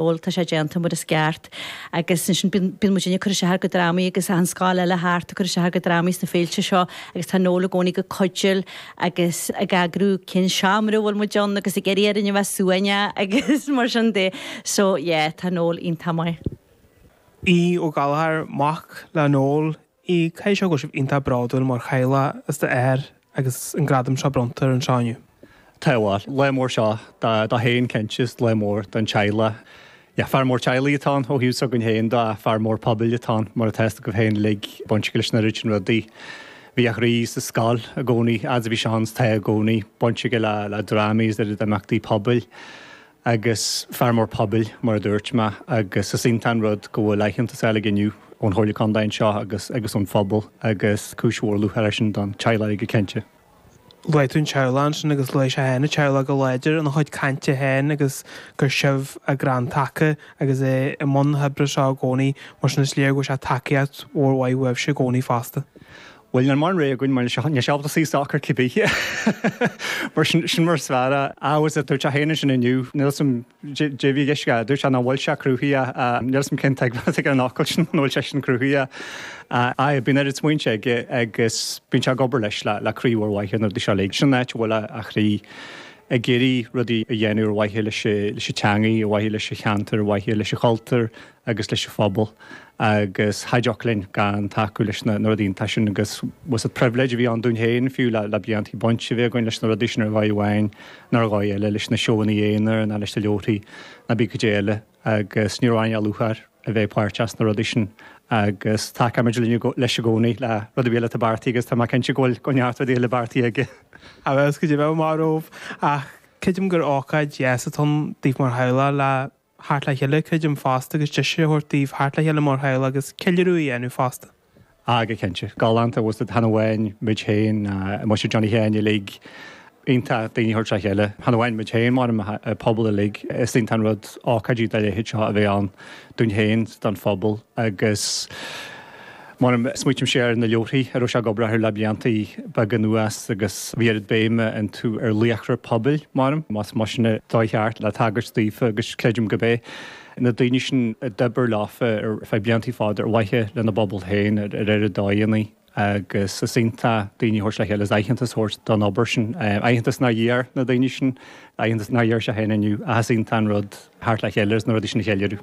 bhuel tá sé déanta mar is gceart agus ansin bíonn muid ag cur isteach ar do dhrámaí agus tá na scoileanna eile thart ag cur isteach ar do dhrámaí sna féilte seo agus tá Noel i gcónaí ag cuidiú agus ag eagrú cén seomra a bhfuil muid ann agus ag iarraidh orainn a bheith suaimhneach agus mar sin de so yeah tá Noel iontach maith. Aodh Ó Gallchóir, mac le Noel, A Aoidh, caithfidh sé go bhfuil sibh iontach bródúil mar theaghlach as do athair agus an gradam seo bronnta air anseo inniu? Tá, bhuel, lá mór seo dó féin cinnte is lá mór don teaghlach. Yeah, fear mór teaghlaigh atá ann ó thaobh s'againn féin dó ach fear mór pobail atá ann mar atá fhios agaibh féin uilig, baint aige leis an oiread sin rudaí. Bhí a chroí sa scoil i gcónaí, fhad is a bhí sé ann is tá i gcónaí, baint aige le, le drámaí is an oiread imeachtaí pobail. agus fear mór pobail mar a dúirt mé agus is iontach an rud go bhfuil aitheantas faighte aige inniu ón Chomhairle Contae anseo agus agus ón phobal agus cúis mhór lúcháir é sin don teaghlach go cinnte. Luaigh tú an teaghlach ansin agus luaigh sé féin a teaghlach go láidir ina chuid cainte féin agus gur sibh a chrann taca agus é i mbun na hoibre seo i gcónaí mar sin is léir go bhfaigheann sé tacaíocht mhór mhaith uaibhse i gcónaí fosta. Bhuel, níl mórán rogha againn mar níl sé ábalta suí socair cibé. Mar sin, sin mar is fearr é. Á, is é, dúirt sé féin ansin inniu, níl 's 'am cé a bhí i gceist aige, dúirt sé nach bhfuil sé cruthaitheach, níl 's 'am cén tuigbheáil atá aige ar an fhocal sin, an bhfuil sé sin cruthaitheach. Á, aye, bíonn oiread smaointe aige agus bíonn sé ag obair leis le croí mhór mhaith ar na rudaí seo uilig. Sin an áit a bhfuil a chroí, ag iarraidh rudaí a dhéanamh ar mhaithe leis an teangaidh, ar mhaithe leis an cheantar, ar mhaithe leis an chultúr, agus leis an phobal agus cha dtiocfadh linn gan tacú leis na rudaí iontacha sin agus is pribhléid a bhí ann dúinn féin fiú le blianta baint a bheith againn leis na rudaí sin ar dhóigh amháin nó ar dhóigh eile, leis na seóanna aonair nó leis na leabharthaí nó cibé caidé eile agus ní raibh ann ach lúcháir a bheith páirteach sna rudaí sin agus tacóimid leis i gcónaí le rud ar bith eile atá beartaithe agus tá mé cinnte go bhfuil neart rudaí eile beartaithe aige. Níl a fhios caidé a bheadh amach romhainn ach creidim gur ócáid dheas atá ann daoibh mar theaghlach le theacht le chéile, cuid ama fosta agus deis a thabhairt daoibh theacht le chéile mar theaghlach agus ceiliúradh a dhéanamh fosta. Ah go cinnte. Galánta bhfuil 's agat, chan amháin muid féin, muise Johnny Sheáin uilig, iontach daoine a thabhairt le chéile. Chan amháin muid féin ach an pobal uilig, is iontach an rud ócáidí dá leithéid seo a bheith ann dúinn féin, don phobal agus, Mar smaoitímse ar na leabharthaí a raibh sé ag obair orthu le blianta beaga anuas agus bhí oiread béime iontu ar laochra pobail, más mar sin atá sé ceart le tagairt daofa agus creidim go b'é na daoine sin a d'oibir leofa ar feadh blianta fada ar mhaithe lena bpobal féin ar oiread dóigheannaí agus is iontach daoine a thabhairt le chéile is aitheantas a thabhairt don obair sin, aitheantas nár iarr na daoine sin, aitheantas nár iarr sé féin inniu ach is iontach an rud theacht le chéile agus na rudaí sin a cheiliúradh.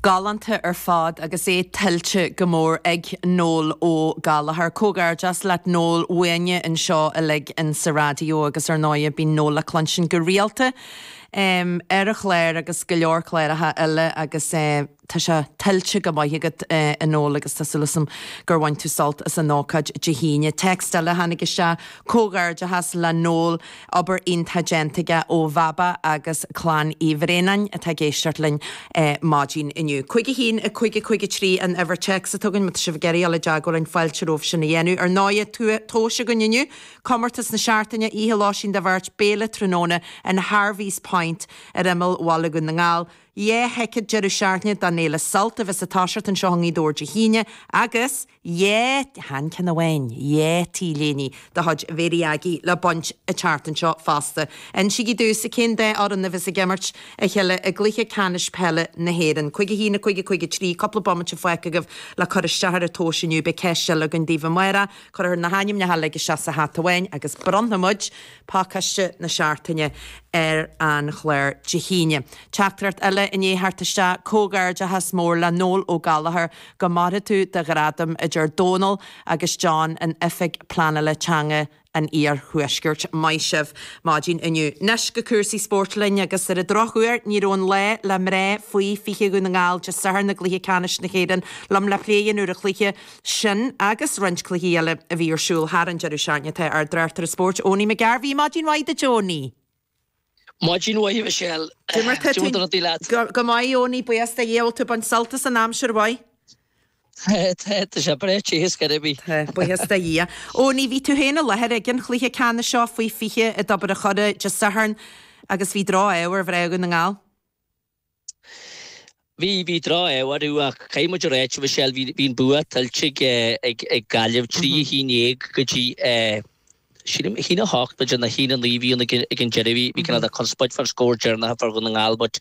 Galánta ar fad agus é tuillte go mór ag Noel Ó Gallachóir. Comhghairdeachas leat Noel, uainne anseo uilig in sa Raidió agus ar ndóighe bíonn Noel le cluinstin go rialta ar an chláir agus go leor cláracha eile agus tá sé tuillte go maith agat a Noel agus tá súil asam gur bhain tú sult as an ócáid Dé hAoine. Text eile a tháinig isteach, Comhghairdeachas le Noel. Obair iontach déanta aige ó Bhaba agus Clann Uí Bhraonáin atá ag éisteacht linn maidin inniu. Cúig a haon, a cúig, a cúig a trí an uimhir téacs atá againn, má tá sibh ag iarraidh dul i dteagmháil linn, fáilte romhaibh sin a dhéanamh. Ar ndóighe, tomhas againn inniu, comórtas na Seachtaine, oíche Lóistín do Bheirt, béile tráthnóna in Harvey's Point ar imeall Bhaile Dhún na nGall, dhá thicéad deireadh seachtaine don fhéile Sult a bheas ag toiseacht anseo i nGaoth Dobhair Dé hAoine, agus. chan ceann amháin, dhá t-léine de chuid Mhary Aggie le baint an tseachtain seo fosta. Insígí domhsa cén dá fhoireann a bheas ag imirt a chéile i gCluiche Ceannais Peile na hÉireann. Cúig a haon, a cúig, a cúig a trí, cúpla bomaite fágtha agaibh le cur isteach ar an tomhas inniu. Beidh ceist eile againn daoibh amárach. Cuirfear na hainmneacha uilig isteach sa hata amháin agus bronnfaidh muid pacáiste na Seachtaine ar an chlár Dé hAoine. Teachtaireacht eile i ndiaidh theacht isteach, Comhghairdeachas mór le Noel Ó Gallachóir Go maire tú do ghradam a deir Dónal agus John in Oifig Pleanála Teanga an Iarthuaiscirt. Maith sibh. Maidin inniu. Anois go cúrsaí spóirt linn agus ar an drochuair ní raibh an lá le mná Faoi 20 Dhún na nGall Dé Sathairn ina gcluiche ceannais na hÉireann liom le plé a dhéanamh ar an chluiche sin agus roinnt cluichí eile a bhí ar siúl thar an deireadh seachtaine. Tá ár dtráchtaire spóirt Eoiní McGarvey Maidin mhaith duit Eoiní. Maidin mhaith a Mhichelle. Cad é mar tá na rudaí leat? Go maith Eoiní, buíochas do Dhia, bhfuil tú ag baint sult as an aimsir mhaith. Tá sé breá te is gairbhí. Tá, buíochas do Dhia. Eoiní, bhí tú féin i láthair ag an chluiche ceannais seo faoi 20 i dTobar an Choire Dé Sathairn agus bhí drochádh ar mhná Dhún na nGall. Bhí drochádh orthu ach caithfidh muid a ráit a Mhichelle bhí an bua tuillte ag Gaillimh, trí a haon déag go dtí sílim haon a hocht, b'fhéidir nó haon a naoi a bhí ann ag an deireadh. Bhí conspóid fán scór deireanach a fuair Dhún na nGall but,